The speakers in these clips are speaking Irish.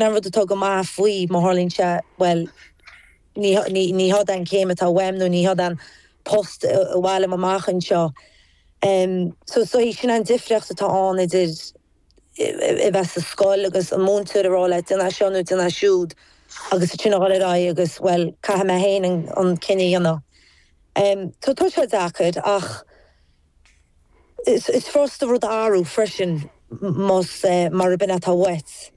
An rud atá go maith faoi, má tharlaíonn sé, bhuel, ní h-é an céim atá uaim nó ní h-é an post ba mhaith liom amach anseo. So is dóigh sin an difríocht atá ann idir a bheith sa scoil agus an múinteoir a rá leat déan é seo nó déan é siúd agus ansin a dhul ar aghaidh agus, bhuel, caithfidh mé féin an cinneadh a dhéanamh. Tá sé deacair ach. Is furasta rud a athrú freisin más mar a b'in atá uait.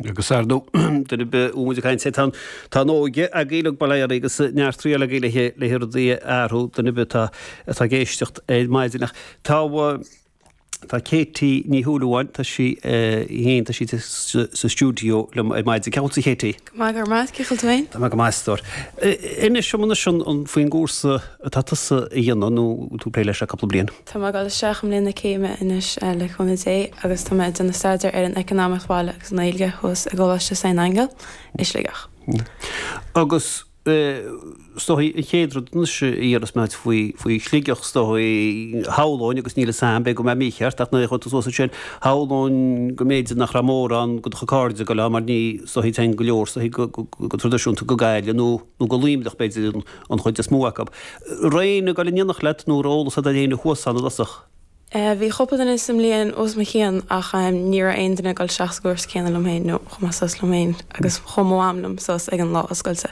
Agus ar ndú, duine ar bith a bhfuil muid ag caint air, tá an óige agaibh uilig bail oraibh agus neart triail agaibh le haghaidh, le haghaidh rudaí a athrú, duine ar bith atá, atá ag éisteacht ar maidin. Ach tá, tá Katie Ní Shúilleabháin, tá sí, eh, fhéin, tá sí sa, sa stiúideo liom ar maidin. Cén chaoi a bhfuil tú Katie? Go maith go raibh maith a'd, cén chaoi a bhfuil tú fhéin. Tá mé go maith a stór. Inis dom anois faoin gcúrsa atá tusa a dhéanamh nó tú ag plé leis le cúpla bliain. Tá mé ag dul isteach i mbliain na céime anois le cúnamh Dé agus tá mé ag déanamh staidéar ar an Eacnamaíocht Bhaile agus an Ghaeilge thuas i gColáiste San Aingeal i Sligeach. Agus Is dóigh, an chéad rud anois a iarras mé ort faoi, faoi Shligeach, is dóigh, shamhlóinn, agus níl 'fhios a'm, b'fhéidir go bhfuil mé mícheart, ach nuair a chuaigh tú suas ansin, shamhlóinn go mb'fhéidir nach raibh mórán go do chuid cairde ag goil ann mar ní, is dóigh, téann go leor, is dóigh, go, go, go traidisiúnta go Gaillimh nó, nó go Luimneach b'fhéidir an, an chuid is mó acu. Raibh éinne ag goil in éineacht leat nó raibh eolas a'd ar éinne thuas ann i dtosach? E, Bhí cúpla duine sa mbliain os mo chionn ach ní raibh aon duine ag dul isteach sa gcúrsa céanna liom féin nó chuaigh mé suas liom féin agus chuaigh mo mham liom suas ag an lá oscailte.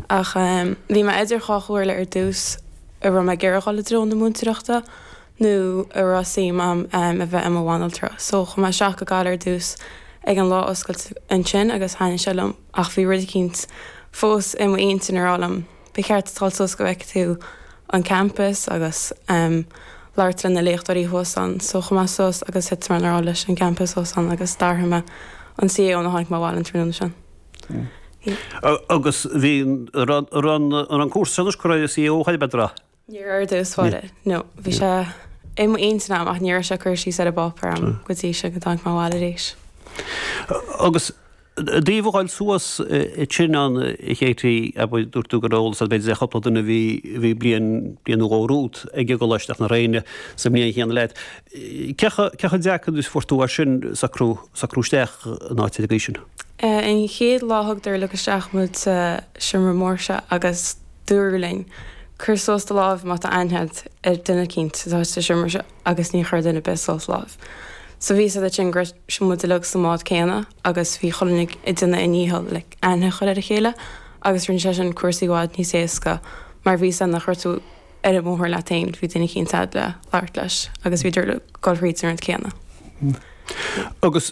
Ach bhí mé idir dhá chomhairle ar dtús an raibh mé ag iarraidh dul i dtreo na múinteoireachta nó an raibh suim a'm a bheith i mo bhanaltra. So chuaigh mé isteach go Gaillimh ar dtús ag an lá oscailte ansin agus thaitnigh sé liom ach bhí rud eicínt fós i m'intinn ag rá liom. Ba cheart duit a dhul suas go bhfeice tú an campas agus labhairt le na léachtóirí thuas ann. So chuaigh mé suas agus thit mé i ngrá leis an gcampas thuas ann agus d'athraigh mé an CAO nuair a tháinig mé abhaile an tráthnóna sin. Agus bhí an cúrsa seo anois curtha ar an CAO chomh maith le drath. Níor éirigh dó sfáile. No, bhí sé i m'intinn a'm ach ní raibh sé curtha síos ar an bpáipéar a'm go dtí sin go dtáinig mé abhaile arís. Agus ó thaobh a dhul suas ansin ann, Katie, abair, dúirt tú go raibh eolas a'd b'fhéidir ar chúpla duine a bhí bhí bliain, bliain nó dhó romhat, ag an gcoláiste ach ní raibh éinne sa mbliain chéanna leat. Cé chomh, cé chomh deacair is a fuair tú é sin, socrú, socrú isteach in áit ar an gcaoi sin? An chéad lá thugadar uilig isteach muid sa seomra mór seo agus. Dúradh linn, Cuir suas do láimh má tá aithne a'd ar duine eicínt atá istigh sa seomra seo agus ní chuir duine ar bith suas a láimh. So bhí 'fhios a'd ansin go raibh muid uilig sa mbád céanna agus bhí chuile dhuine ag déanamh a ndícheall le aithne a chur ar a chéile agus rinne sé sin cúrsaí i bhfad níos éasca mar bhí 'fhios a'd nach raibh tú ar an mbóthar leat fhéin. Bhí duine eicínt a'd le labhairt leis agus bhíodar ag dul thríd an rud céanna. Agus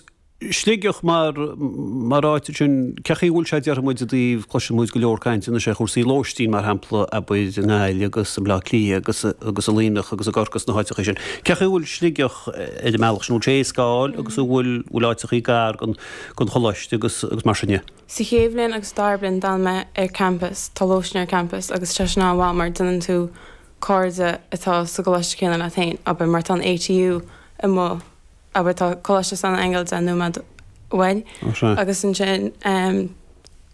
Sligeach mar, mar áit ansin, cén chaoi a bhfuil sé déarfaidh muid i dtaobh, cloiseann muid go leor cainte anois ar chúrsaí lóistín mar shampla abair i nGaillimh agus i mBleá Cliath agus, agus i Luimneach agus i gCorcaigh sna háiteachaí sin. Cén chaoi a bhfuil Sligeach ar an mbealach sin, bhfuil sé éasca a fháil agus a bhfuil, bhfuil áiteachaí gar don, don choláiste agus, agus mar sin de. Sa chéad bhliain agus dara bliain d'fhan mé ar campus, tá lóistín ar campus agus tá sin an-mhaith mar déanann tú cairde atá sa gcoláiste céanna leat féin, abair mar tá an ATU amuigh, abair tá Coláiste San Aingeal deich nóiméad uainn agus ansin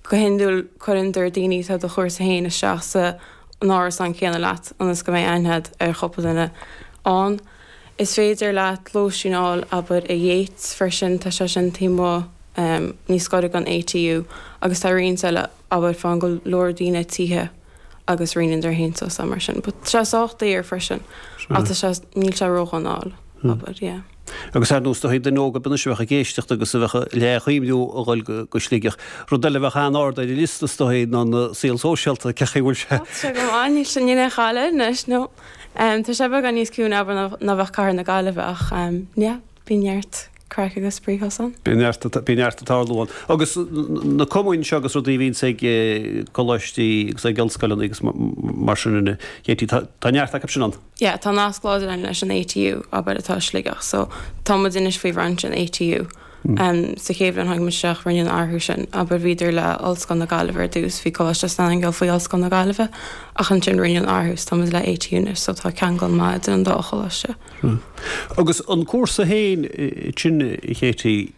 go hiondúil cuireann dar daoine atá ar do chúrsa féin isteach sa an árasán céanna leat ionas go mbeidh aithne agat ar chúpla duine ann. Is féidir leat lóistín a fháil abair i Yeats freisin tá sé sin taobh amuigh níos gaire don ATU agus tá roinnt eile abair faigheann go leor daoine tithe agus roinneann dar aontíos eile mar sin. But tá sé sách daor freisin ach tá sé, níl sé ródhona, abair, yeah. Agus ar ndóigh is dóichí duine óg ar bith anois a bheadh ag éisteacht agus a bheadh ag cuimhniú a dhul go Sligeach. Rud eile a bheadh an-ard ar an liosta is dóichí ná an saol sóisialta, cén chaoi a bhfuil sé. Tá sé go maith, níl sé, níl aon chaill air anois, no. Tá sé beagán níos ciúine, abair, ná bheadh cathair na Gaillimhe ach yeah, bhí neart. Craic agus spraoi chosáin. Bíonn neart ag tarlú ann. Agus na cumainn seo agus rudaí a bhíonns ag coláistí agus ag ollscoileanna agus mar sin a Katie, tá neart acu sin ann? Yeah, tá nasc láidir ann leis an ATU, abair, atá i Sligeach. So, tá muid anois faoi bhrainse an ATU. Sa chéad bhliain a tháinig muid isteach, rinneadh an athrú sin, abair, bhíodar le Ollscoil na Gaillimhe ar dtús, bhí Coláiste San Aingil faoi Ollscoil na Gaillimhe, ach ansin rinneadh an athrú, so tá muid le ATU anois, so tá ceangal maith idir an dá choláiste. Agus an cúrsa féin ansin, Katie,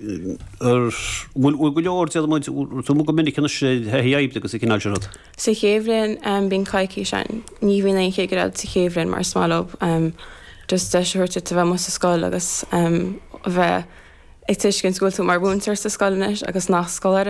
an bhfuil go leor de, mbíonn tú amuigh go minic anois ar thaithí oibre agus an cineál sin rud? Sa chéad bhliain bíonn coicís ann. Ní bhíonn aon chigire sa chéad bhliain mar is maith leo just deis a thabhairt duit a bheith amuigh sa scoil agus a bheith ag tuiscint go bhfuil tú mar mhúinteoir sa scoil anois agus nach scoláire thú.